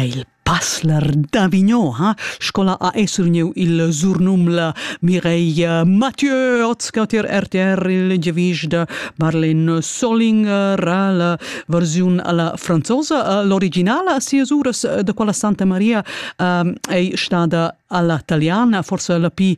Il pasler da Mignon ha scola ha essurgniu il surnum la Mireia Mathieu oz cater RTR il giavisch da Marlene Solling ra la versiun alla franzosa l'originala sias uras da quella Santa Maria ei stada alla italiana forse la pi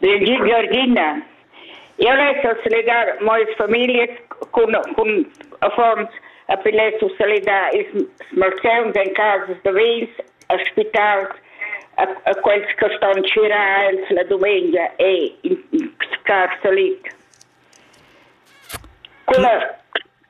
Giorgina, eu less salidar moas familias cun, cun affons e poi less salidar ils malsauns en casas da vins, a spitals, a, a quels che ston skirar els la dumengia e in scar salit. Quella,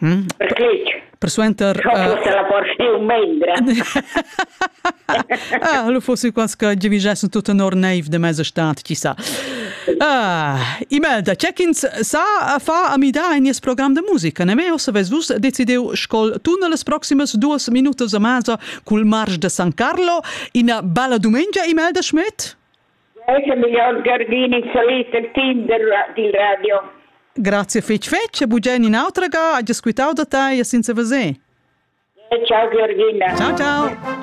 Ric. Persuenter... Fosse la porziun mendra. ah, lu fossi quas che givigessen tut tenor neiv de mesa stat, chi sa. Ah, Imelda, c'è ch'ins sa fa a midar in nies program de musica, ne me o se ves vus decideu scol tu nelle proximas duas minutas a masa cul marsch de San Carlo, ina bella dumengia Imelda Schmidt? Gardini salit el team dil radio. Grazie fetg fetg e bugen in autra ga, ha squitau da tei e senza veser. Ciao Georgina. Ciao ciao.